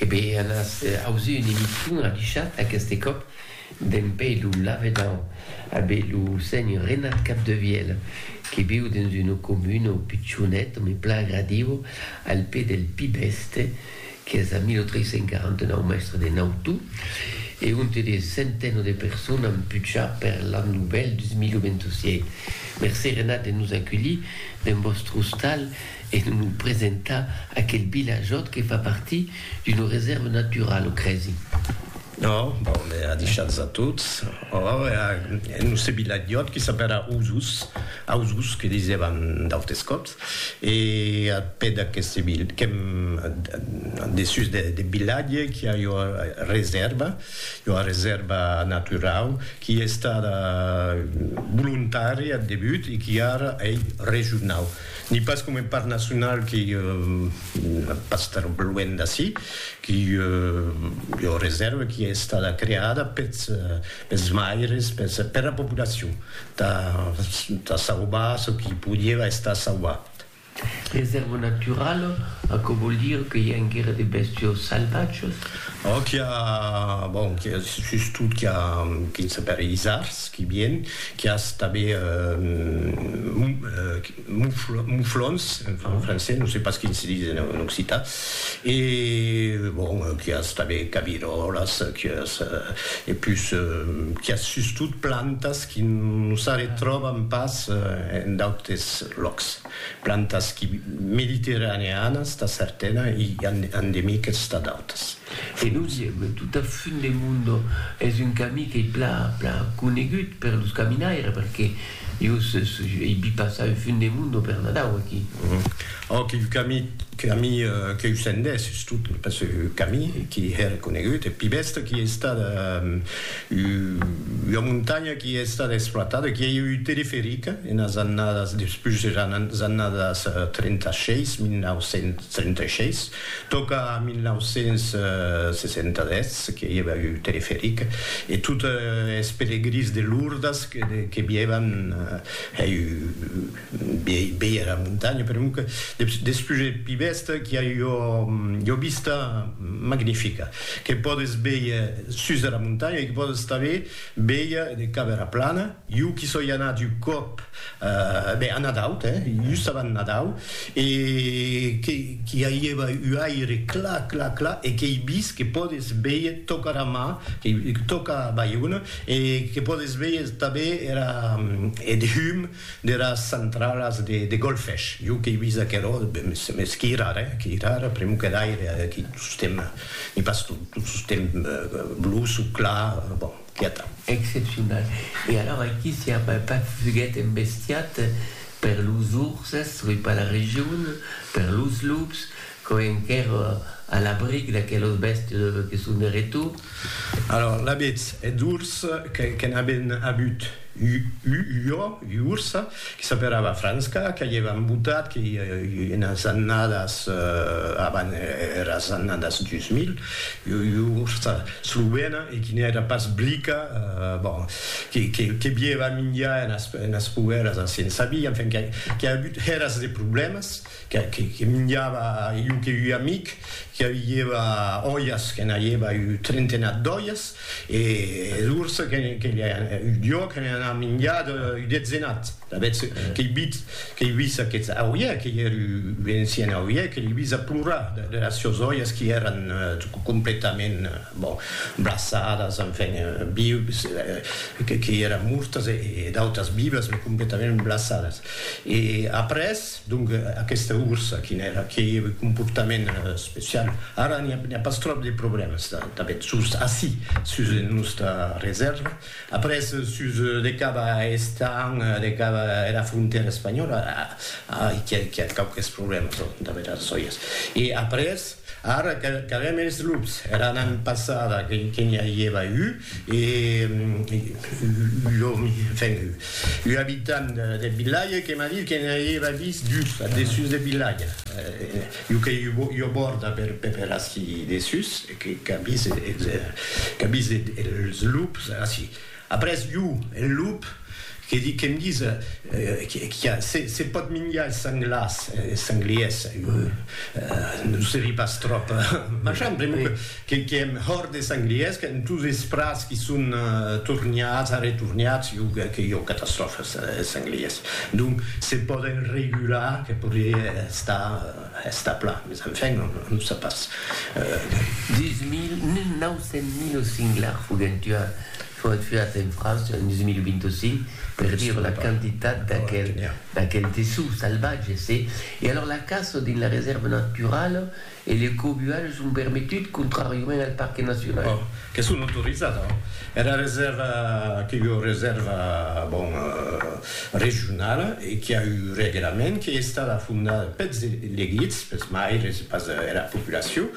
E be an as ausut un emission adushat aqueste còp d'en pè lo lavedan a be lo senhor Renat Capdevielle que viu dens una comuna pichonet me plan agradiu al pè del Pi Bèste qu'es a 1349 mèstre de Nautu e onte de centeno de persona an pucha per l'an novèl 2027. Mercé Renat de nos aculhir dens vòstre ostal. E non lo presentar aquel vilajòt que fa partir d'una resèrva naturala, o cresi? No, bon, me a deishats a tots. Or, e a nos se vilajòt que s'apèra Osos, Ausos que disèvan d'autes còps, e a pè d'aqueste vil, qu'èm dessús deth vilatge, qu'i a ua resèrva, ua resèrva naturau, qui estada volontària ath debut e qui ara ei regionau. Ni pas com un parc nacional qui pas estar luènh d'ací, qui ua reserva qui es estada creada peth pes maires, pes pera populacion ta ta sauvar çò qui podieva estar sauvat. Reserva naturala, aquò vòl dire que i a enguera de bèstios salvatges? Òc, i a, bon, qui a sustot qui a, qui se pere isards. Qui bien, qui as tanben muflons, en francés, non sais pas quin se dis en occitan, e bon, qui as tanben caviròlas, qui as, e pus, qui as sustot plantas qui non s'arretròban pas en d'autes lòcs. Plantas qui mediterraneanas tà certana i endemiques tà d'autas. E nos ièm tot a fund de Mundo, es un camí qu'ei pla pla conegut per los caminaires perque jo ei vi passar un fund de Mundo per Nadau aquí. Ò quilh camí camí queu sendèsses tot pas un camí qui hè reconegut, eth pi bèsta qui ei estat Ua montanha qui a estat exploitada, qui a ieu un teleferic enas annadas, despús eras annadas 36, 1936, tòca a 1967 que i ava un teleferic e tot es pelegrins de Lourdes que vievan hèi. Bèia era montanha, per un que despús eth pi bèsta qu'i a ua vista magnifica que pòdes bèir sus dera montanha e que pòdes tanben bèir de cap era plana. Jo qu'i soi anat un còp, ben, a Nadau, hè, just avant Nadau, e qu'i aiéva un aire clar, clar, clar e qu'ei vist que pòdes bèir tòca era mar, tòca Baiona e que pòdes bèir tanben era, eth hum deras centralas de golfech. Jo qu'ei vist aquerò, mès qu'i rara, eh, qu'i rara, pr'emu que d'aire, aqui tostemp n'i pas tot, tot tostemp bluç o clar, bon, quieta. Excepcional. E alors aqui siá pas fuguet embestiat per los urses, oi, per la region, per los lups, Quò enquèr a l'abric d'aquelos bèstes que son de retor. Alòr, l'abetz eth urs que n'aben abut u jo, u urs, que s'aperava Franska, que aievan embotat que i enas annadas avan eras annadas 2000, u ursa slovena e qui n'èra pas blica, bon, que bieva minjar enas poeras a Sensabí, enfin, que a abut eras de problèmas. que minjava io que ui amic qui aviieva oias que n'aieva ui trentenat d'oias e d'urs que io que n'en a minjat ui detzenat d'avetz qu'ei bit qu'ei vis aqueth auie que ier ui encien auie que l'ei vis a plorar de las sios oias qui eran completament bon blassadas enfin vius que qu'ei eran mortas e d'autas vivas me completament blassadas e après Donc aquesta ursa quin èra? Qué comportament especial? Ara n'i a pas tròp de problèmas tanben sus ací, sus nosta resèrva. Après sus de cap a Estañ, de cap a era frontèra espanhòla, ai qu'i a quauques problèmas damb era sòias. E après ara qu'avèm es lups, era annada passada que n'i a ieva un, E un abitant deth vilatge que m'a dit que ne auieva vist dus ath dessús deth vilatge. Un qu'ei ua bòrda per ací dessús, qu'a vist es lups ací. Après, un, un lup Que di que'm dise qu'a se pòt minjar es sanglars, es sangliers, non serie pas tròp marchand, pr'amor que que èm hòrt des sangliers, qu'èm tous es prats qui son torniats, arretorniats, jo que que jo catastròfa es sangliers. Donc se pòden regular que podrie estar estar plan, mes enfin non non se pas. 1900 mil o singlars foguèn tuats. Foguèt fiat en França en 2025 per dire la quantitat d'aquel tessut salvatge, se. E alors la caça dins la resèrva naturala e le cobuatge son permetut contràriament al parque nacional. Bon, que son autorizat, hein. Era resèrva qu'ei ua resèrva, bon, regionala e qui a un reglament, qui ei estada fondada peths elegits, peths maires e pas era populacion.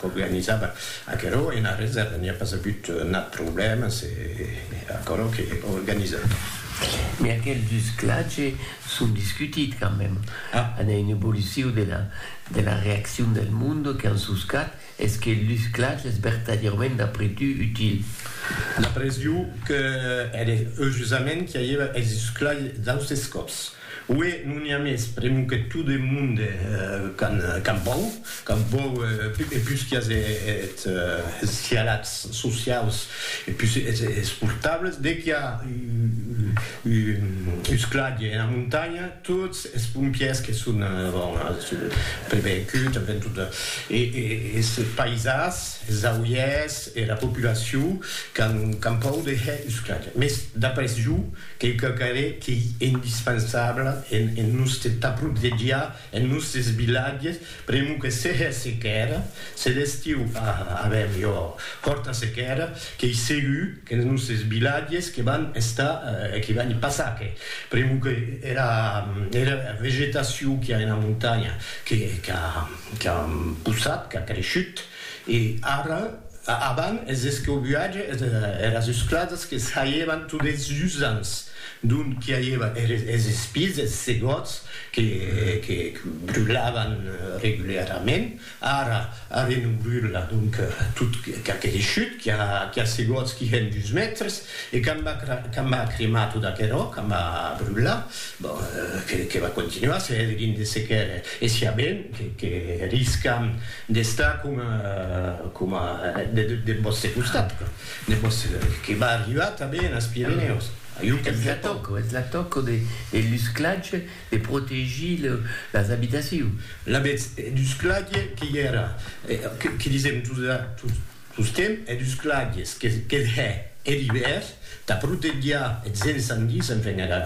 qu'organizava aquerò ena resèrva n'i a pas agut nat problèma, se aquerò que organizava. Mès aquel dus clatge son discutit quand même, an a un evoluciu de la de la reaccion del monde qu'an soscat es que el dus clatge es vertadièrament d'après tu util? D'après jo que ère eujusament qu'i aieva es dus clatge d'austes còps. Ué, non i a mès pr'emu que tu de monde qu'an pòur, qu'an pòur e pus qu'i as eth cialats sociaus e pus es portables, de qu'i a un sclatge ena montanha, tots es pompiers que son bon prevencuts, en fin, tot es paisans, es auiers, era populacion qu'an pòur de hèr un sclatge. Mès d'après jo, Qu'ei quauquarren qu'ei indispensaabla en en nustes t'aprotegiar, en nustes vilatges, pr'amor que se hè sequèra, se l'estiu a aver jo fòrta sequèra, qu'ei segur qu'en nustes vilatges que van estar, que van i passar que, pr'amor que era era vegetacion qu'i a ena montanha que qu'a qu'a possat, qu'a creishut, E ara, avant, es escobuatge eras uscladas que saievan tot es usants, d'ont qu'i aieva es espís, es segòts que brulavan regularament, ara arren o brula, donc tot qu'a creishut, qu'i a segòts qui hèn dus mètres, e quand va cremar tot aquerò, quand va brular, bon, que va continuar, se hèdrien de sequer, e siá ben que riscam D'estar coma, coma, deth vòste costat, deth vòste, que va arribar tanben enes Pirenèus. Ajú qu'en Japon. Es la tòca, es la tòca de l'usclatge de protegir las abitacions. Lavetz, d'usclatge que i èra, que disèm, Susquem eth usclagues qu'eth hè er ivèrn tà protegiar eths encendis, enfin era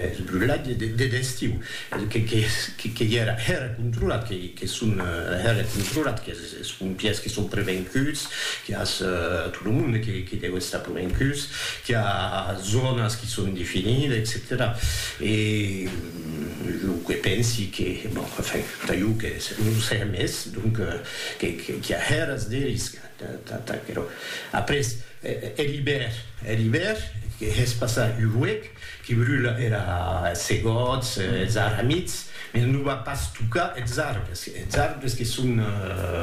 eth brulatge deth estiu, que i era hèra controlat, que son hèra controlat, qu'es pompièrs que son prevencuts, qu'i as tot lo monde que deu estar prevencuts, qu'i a zònas qui son definides, etcetèra E jo que pensi que, bon, enfin, tà jo que non o sé mès, donc. Qu'i a hèras de risca, qu'aquerò. Après, er ivèr, er ivèr, que hè's passar un huec, que brula era segòts, es arramits, mès non va pas tocar es arbres, es arbres que son,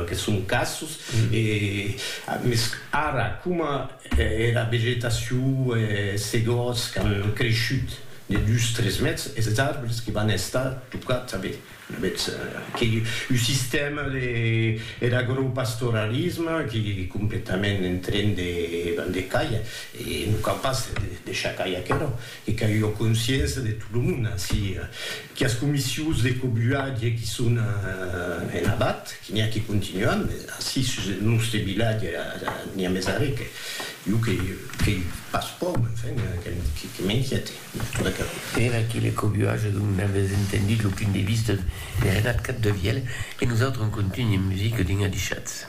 que son cassos, e, mès ara, coma era vegetacion, es segòts qu'an creishut de dus, tres mètres, es arbres que van estar tocats tanben. Mès qu'ei un sistèma der agropastoralisme qui ei completament en tren de de cair e non cau pas deishar cair aquerò, que cau ua consciença de tot lo monde ací, qu'as comissions de cobuatge qui son en abat, que n'i a qui continuan, mès ací sus eth nòste vilatge n'i a mès arré que jo qu'ei pas pòur, enfin, que m'inquiète. Per aquí le cobuatge d'un avès entendit lo punt de vista de Renat Capdevièlh e nosautres en contunhe musica dins Adichatz.